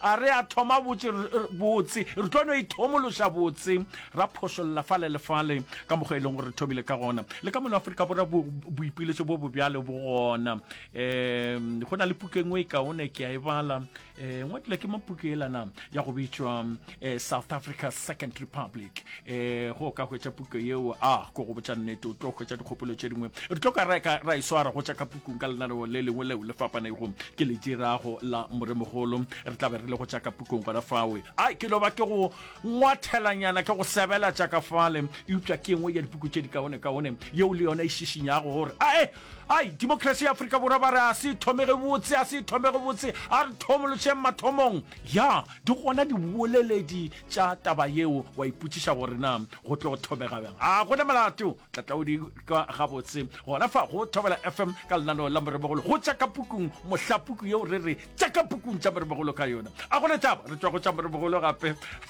A re a thoma botše botse, re tlo no ithomološa botse, ra phošolla fale le fale ka mokgwa e leng gore re thomile ka gona. Le ka mono Afrika Borwa bo, boipiletšo bo bobjalo bo gona. Um go na le puku e nngwe e kaone ke a e bala, um ngwadilwe ke mapuku elana ya go bitšwa eh, south africa second republic eh, go ka hwetša puku yeo a ah, ko go botša nnete o tlo hwetša dikgopolo tše dingwe re tlo ka ra e swara go tša ka pukung ka lenaneo le lengwe leo le fapanego ke le dirago la moremogolo re tla be re le go tša ka pukung gona fawe a ke loba ke go ngwathelanyana ke go sebela tša ka fale eupša ke engwe ya dipuku tše di kaone kaone yeo le yone e šišinyago gore ae ai democracy ya aforika borwa ba re a se thomege botse a se thomege botse a re thomolotšheng mathomong Ya, di gona diboleledi tša taba yeo, wa ipotšiša gore na go tlo thobega bjang. A go na molato, tla tla o di kwa gabotse gona fa go Thobela FM ka lenaneo la Moremogolo go tša ka pukung, mohla puku yeo re re tša ka pukung tša Moremogolo ka yona. A go na taba, re tšwa go tša Moremogolo gape.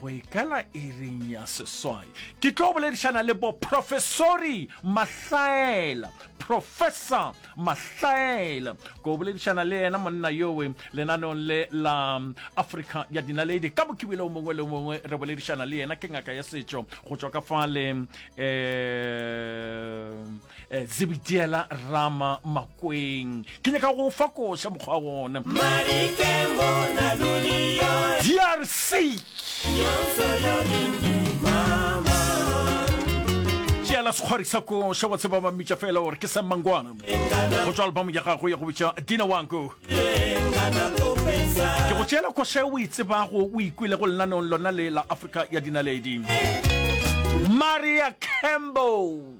go e kala ereng ya seswai ke tlo boledišana le boprofesori mahlaela professor mahlaela ko boledišana le yena monna yowe lenaneong le la africa ya dinaledi ka bokibile o mongwe le mongwe re boledišana le yena ke ngaka ya setšo go tšwa ka fale um Eh, zebitiela rama makweng ke nyaka go fa koša mokgwa wa gona drc tšeela sekgwari sa koša wa tseba ba mmitša fela gore ke sa mangwana go tswa albamo ya gago ya go bitša dina wanko ke go tšeela koša o e tsebago o ikwile go lenanong lona le la afrika ya dinaledi maria campbell